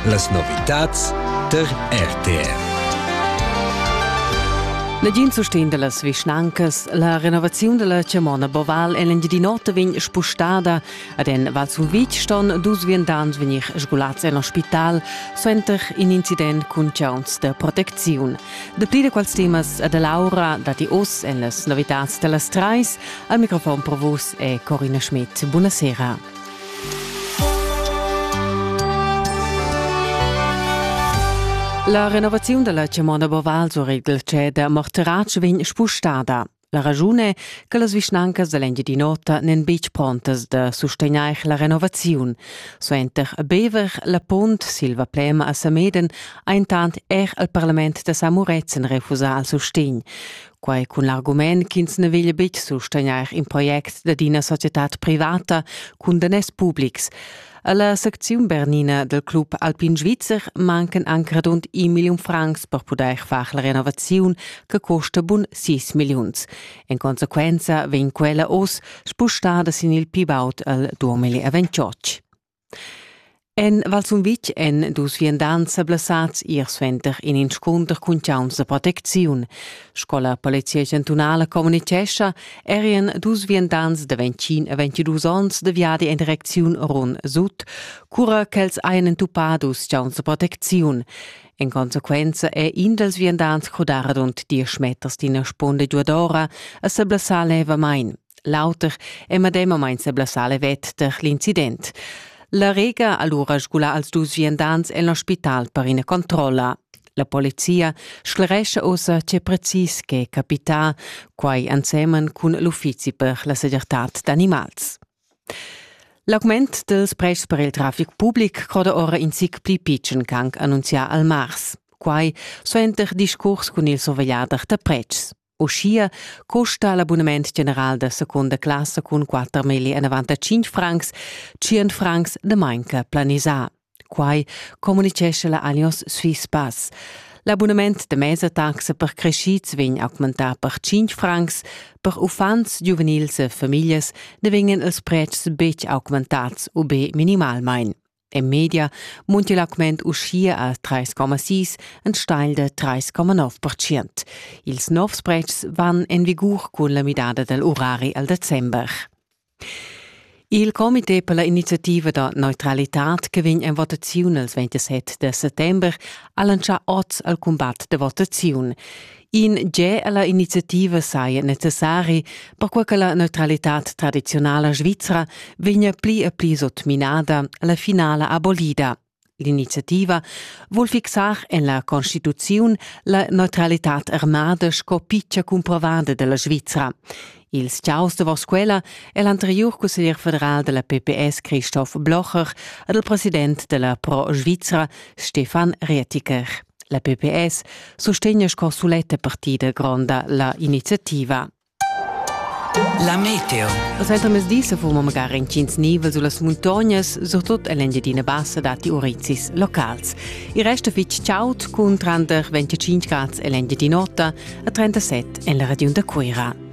Las novitads tar RTR. Negin sustegn dallas vischnancas. La renovaziun dalla chamona Boval en l'Engiadin'Ota vegn spostada. Ad en Val Sumvitg ston dus viandants vegnir sgulats en ospital suenter in incident cun chauns de protecziun. Dapli da quals temas e da Laura datti oz en las novitads dallas treis. Al microfon pro vos è Corina Schmidt. Buonasera. La renovaziun dalla chamona Boval sur igl ceder Morteratsch vegn spustada. La ragiun è che las vischnancas da l'Engiadin'Ota n'en betg prontas da sustegnair la renovaziun. Suenter Bever, la Pont, Silva Plema a Sameden ha intant er il parlament da Samuretzen refusà il sustegn. Quai cun l'argument ch'ins na veglia betg sustegnair in project dad ina societad privata cun daners publics. Alla secziun bernina del Club Alpin Svizzer mancan anc radund un million francs per pudair far la renovaziun che costa bun 6 milliuns. In conseguenza vegn quella oz spustada sin il pi baud al 2028. En Val Sumvitg èn dus viandants sa blessads ier suenter in inscunter cun chauns da protecziun. Sco la Polizia chantunala communitgescha, erien dus viandants da 21 a 22 onns da viadi en direcziun Run Sut, cura ch'els hajan entupà dus chauns da protecziun. En consequenza è in dals viandants crudà radund diesch meters d'ina sponda giuadora a sa blessar levamain. L'auter è medemamain seblassale vetter l'incident. La Rega ha lura sgulà als dus viandants en l'ospital per ina controlla. La polizia sclerescha ossa tge precis che capita, quai ensemen cun l'uffizi per la segirtad d'animals. L'augment dels prezs per il traffic public croda ora in zic pli pitschen qu'anc annunzià al mars. Quai suenter discurs cun il survegliader da prezs. Uschia custa l'abunament general da secunda classa cun quatter milli enavant a cinc francs, tschient francs de manca planisà. Quai communicescha la Allianz Swiss Pass. L'abunament de mesa taxa per crescids vegn augmentà per 5 francs, per uffants, giuvenils e famiglias ne vegnan els pretschs betg augmentats u be minimalmain. En media munti l'augment uschia a 3,6 enstagl da 3,9 Ils novs pretschs van en vigur cun la midada dal urari al december. Il comité per la iniziativa da neutralitad che vegn en votaziun il 27 de settember ha lancià oz al cumbat de votaziun. In ge alla iniziativa saja necessari, perquai che la neutralitad tradiziunala svizra vegna pli e pli sotminada alla finala abolida. L'iniziativa vul fixar en la Constituziun la neutralitad armada sco piccia cumprovada della Svizra. Il sciaus davos quella è l'anterior consiglier federal della PPS Christoph Blocher ed il president della Pro Svizra Stefan Rietiker. La PPS sustegna sco suletta partida gronda la iniziativa. La meteo. Als entamesdi se fuma magari incins nivel sulla muntognas, surtut all'Engiadina Bassa dati urizis locals. Il resto fitch ciaut cun 35 gradi all'Engiadin'Ota e 37 en la region da Cuira.